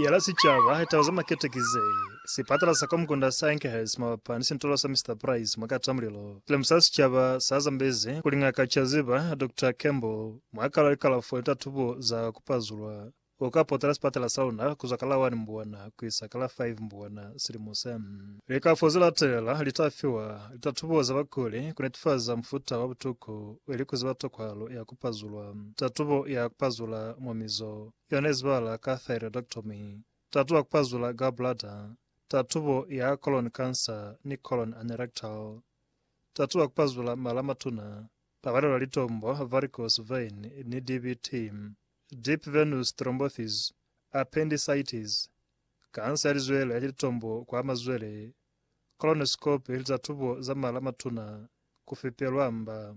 ya la sicaba hetala za makete ki ze, sipatala sa Komkunda sa Enkhurst mabapa ni sintolo sa Mister Price mwa Katamulilo. Silimu sa sicaba sa zambezi kuli Ngaka Chaziba, Doctor Campbell, mwa kalo ya kalafo ni tatubo za ku pazulwa, u ka potela sipatala sa luna kuzwa ka la 1 Mbwana ku isa ka la 5 Mbwana silimu se. Likalafo ze latelela li ta fiwa litatubo za bakuli ku netifaza mufuta wa butuku ili ku ziba tokwahalo ya ku. kupazulwa. Tatubo ya kupazula mwa mizo yona izibahala ka thyroidectomy, tatubo ya kupazula gallbladder, tatubo ya colon cancer ni colon anerectal. Tatubo ya kupazula mala a matuna, pakalelwa litombo, varicose vein, ni DVT, deep venous thrombosis, appendicitis, kansa ya lizwele ni litombo kwa mazwele, colonoscopy ni tatubo za mala a matuna, kufepelwa mba.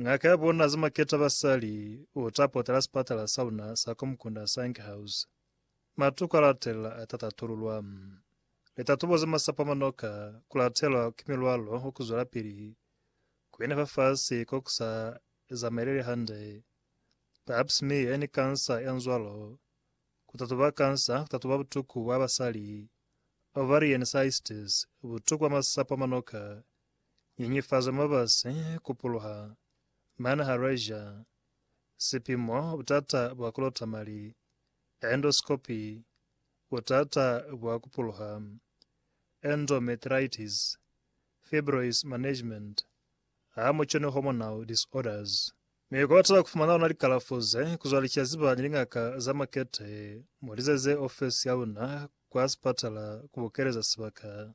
Ngaka ya bona Zimaketa Basali u ta potela sipatala sa luna sa kwa mukunda sa Anchor House. Matuku a latelela a ta tatululwa. Litatubo ze masapo a manoka ku latelwa ki milwalo wa ku zwelapili ku yena fafasi ko ku sa zamaeleli hande, pap smear ni kansa ya nzwalo, ku tatuba kansa, ku tatuba butuku bwa basali, ovarian cysts, butuku bwa masapo a manoka, Nyenyefazo mabasi ku puluha mane ha Russia, sipimo butata bwa ku lota mali, endoscopy, butata bwa ku puluha, endometritis, fibroids management, hamoco ni hormonal disorders. Mi kwa bata ku fumana ona likalafo ze, ku zwa licaziba ni lingaka za makete, mu lizeze ofesi ya luna kwa sipatala ku bukeleza sibaka.